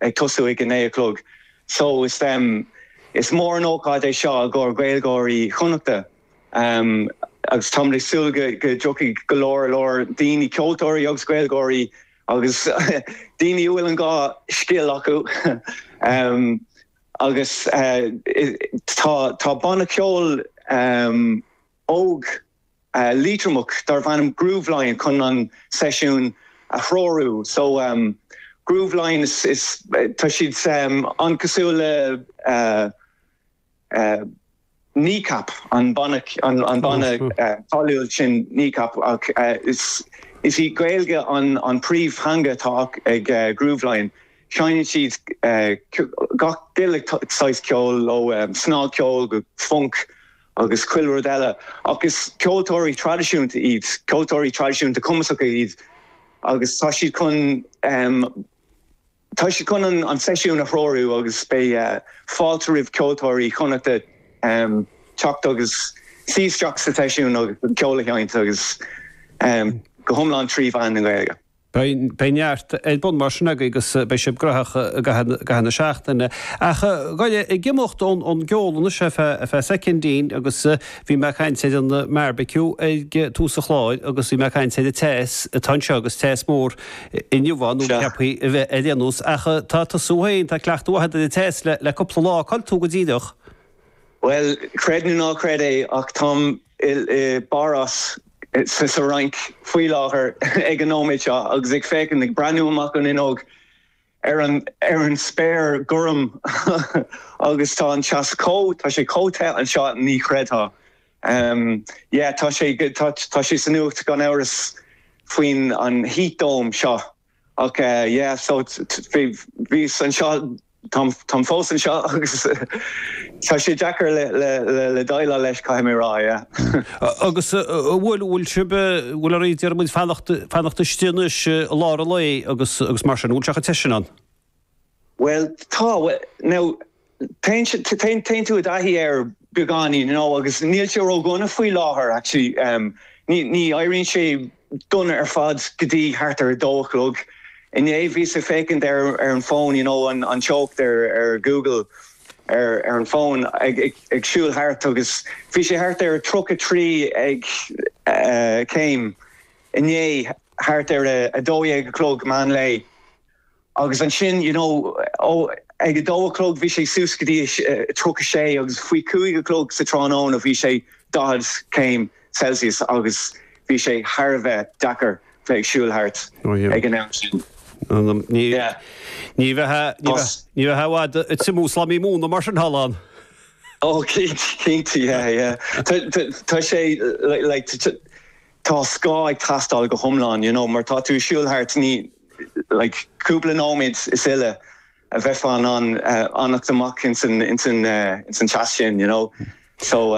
ag tosú ag a naoi a chlog so is is mór an ócáid é seo i gcomhair Gaeilgeoirí Chonnachta agus táimid ag súil go go dtiocfaidh go leor leor daoine, ceoltóirí agus Gaeilgeoirí agus daoine a bhfuil an dhá scil acu agus tá tá banna ceoil óg. Liatromach darbh ainm Grooveline chun an seisiún a threorú. So, Grooveline is tá siad an-chosúil le Kneecap, an banna an banna cáiliúil sin Kneecap ach is í Gaeilge an an príomhtheanga atá ag Grooveline. Seinneann siad gach uile saghas ceoil ó snagcheol go funk agus chuile rud eile, ach is ceoltóirí traidisiúnta iad, ceoltóirí traidisiúnta cumasacha iad agus tá siad chun, tá siad chun an seisiún a threorú agus beidh fáilte roimh cheoltóirí Chonnachta teacht agus suí isteach sa tseisiún agus an ceol a sheinnt agus go hiomlán trí mheán na Gaeilge. Beidh neart ar bun mar sin agaibh agus beidh sibh gnóthach i gcaitheamh na seachtaine. Ach ag goil ag imeacht ón gceol anois ar feadh soicindín agus bhí mé ag caint ar an mbeárbaiciú ag tús an chláir agus bhí mé ag caint ar an teas atá anseo agus teas mór inniu ann nó ceaptha a bheith ar aon nós. Ach tá tusa féin, tá cleachtadh maith agat ar an teas le cupla lá. Cá bhfuil tú go díreach? Bhuel, creid nó ná creid é ach táim i bPáras, sa Fhrainc, faoi láthair ag an nóiméad seo agus ag féachaint, ag breathnú amach an fhuinneog ar an, ar an spéir ghorm agus tá an teas chomh, tá sé chomh te anseo ní chreidfeá. Yeah, tá sé, tá sé sa nuacht gan amhras faoin an heat dome seo. Okay yeah so bhíos anseo, táim fós anseo agus tá sé deacair le déileáil leis caithfidh mé rá yeah. Agus an bhfuil, bhfuil sibh, bhfuil oraibh, déarfaimid fanacht, fanacht istigh anois i lár an lae agus, agus mar sin, an bhfuil sé chomh te sin ann? Bhuel, tá, now, téann, téann tú i dtaithí air beagáinín, you know, agus níl sé ró-dhona faoi láthair, actually, ní, ní éiríonn sé dona ar fad go dtí thart ar a dó a chlog. Inné bhíos ag féachaint ar, ar an fón, you know, an, an teocht ar, ar Google ar, ar an fón, ag, ag, ag siúl thart agus bhí sé thart ar tríocha trí ag, eh, céim inné thart ar a, a dó dhéag a chlog meán lae. Agus ansin you know ag a dó a chlog bhí sé suas go dtí a tríocha sé agus faoi chúig a chlog sa tráthnóna bhí sé daichead céim Celsius agus bhí sé thar a bheith deacair bheith ag siúl thart ag an am sin. Ní bheadh ní bheadh i bhfad ag triomú slám móna mar sin thall ann. Ó cinnte yeah yeah tá sé like tá scáth ag teastáil go hiomlán you know mar tá tú ag siúl thart ní like, cúpla nóiméad sin uilig a bheifeá in ann fanacht amach insan insan insan teas sin, you know. So,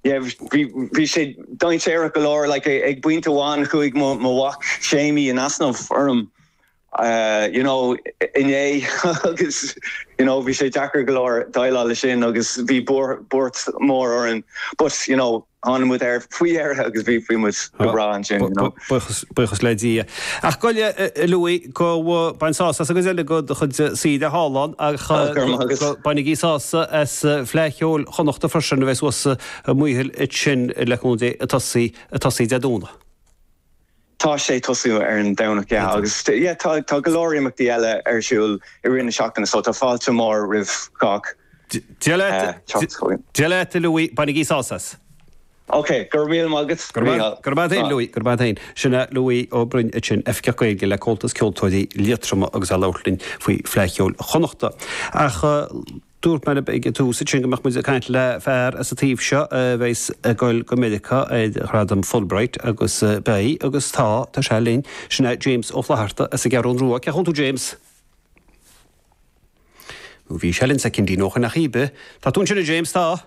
yeah, bhí sé dainséarach go leor, like, ag pointe amháin chuaigh mo mhac Séimí in easnamh orm, you know, inné agus, you know, bhí sé deacair go leor déileáil leis sin agus bhí buairt mhór orainn but, you know, Tháinig muid air faoi dheireadh agus bhí muid go breá ansin, you know. Buíochas le Dia. Ach go Louis go mbaine tú sásamh as an gcuid eile de do chuid saoire slán ach go bainigí sásamh as Fleadh Cheoil Chonnacht freisin a bheas thuas i Maothail ansin le cúnamh Dé atá ag tosaí Dé Domhnaigh. Tá sé ag tosú ar an Domhnach, yeah, agus tá go leor imeachtaí eile ar siúl i rith na seachtaine so tá fáilte mhór roimh chách teacht chugainn. Dia leat a Louis, bainigí sásamh as! Ok, go raibh míle maith agat Mícheál. Go maire tú, Louis, go maire tú. Sin é Louis Ó Broin ansin, Oifigeach Gaeilge le Comhaltas Ceoltóirí Liatroma agus é ag labhairt linn faoi Fhleadh Cheoil Chonnacht. Ach. Dúirt mé libh ag tús ansin go mbeadh muid ag caint le fear as an taobh seo a bheas ag goil go Meiriceá ar Ghradam Fulbright agus beidh, agus tá, tá sé linn. Sin é James Ó Flatharta as an gCeathrún Rua. Cén chaoi a bhfuil tú James? Nó bhí sé linn soicindín ó shoin ach íbe, tá tú ansin a James, tá?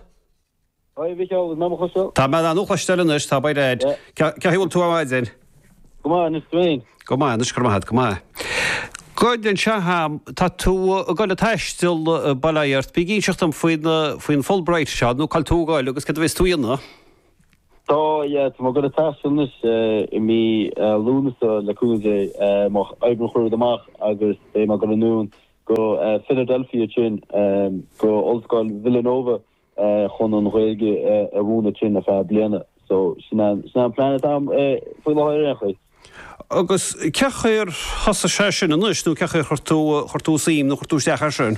Hi Mhicheál, is maith mo chos. Tá mé ann, cloistear anois thú, bail ó Dhia ort. Cén chaoi a bhfuil tú ar maidin? Go maith, anois tú fhéin? Go maith, anois go raibh maith a't, go maith. Gabh i leith, tá tú a goil a taisteal, bail ó Dhia ort, bí ag inseacht dom faoin Fulbright seo, nó cá bhfuil tú a goil agus cad a bheas tú a dhéanamh? Tá, yeah, tá mé a goil a taisteal anois i mí Lúnasa, le cúnamh Dé, má oibríonn chuile rud amach agus beidh mé a goil anonn go Philadelphia, sin go Ollscoil Villanova. chun an Ghaeilge a mhúineadh ansin ar feadh bliana. So sin an sin an plean atá agam faoi láthair ar aon chaoi. Agus cén chaoi ar thosaigh sé sin anois nó cén chaoi ar chuir tú chuir tú suim nó chuir tú isteach air sin?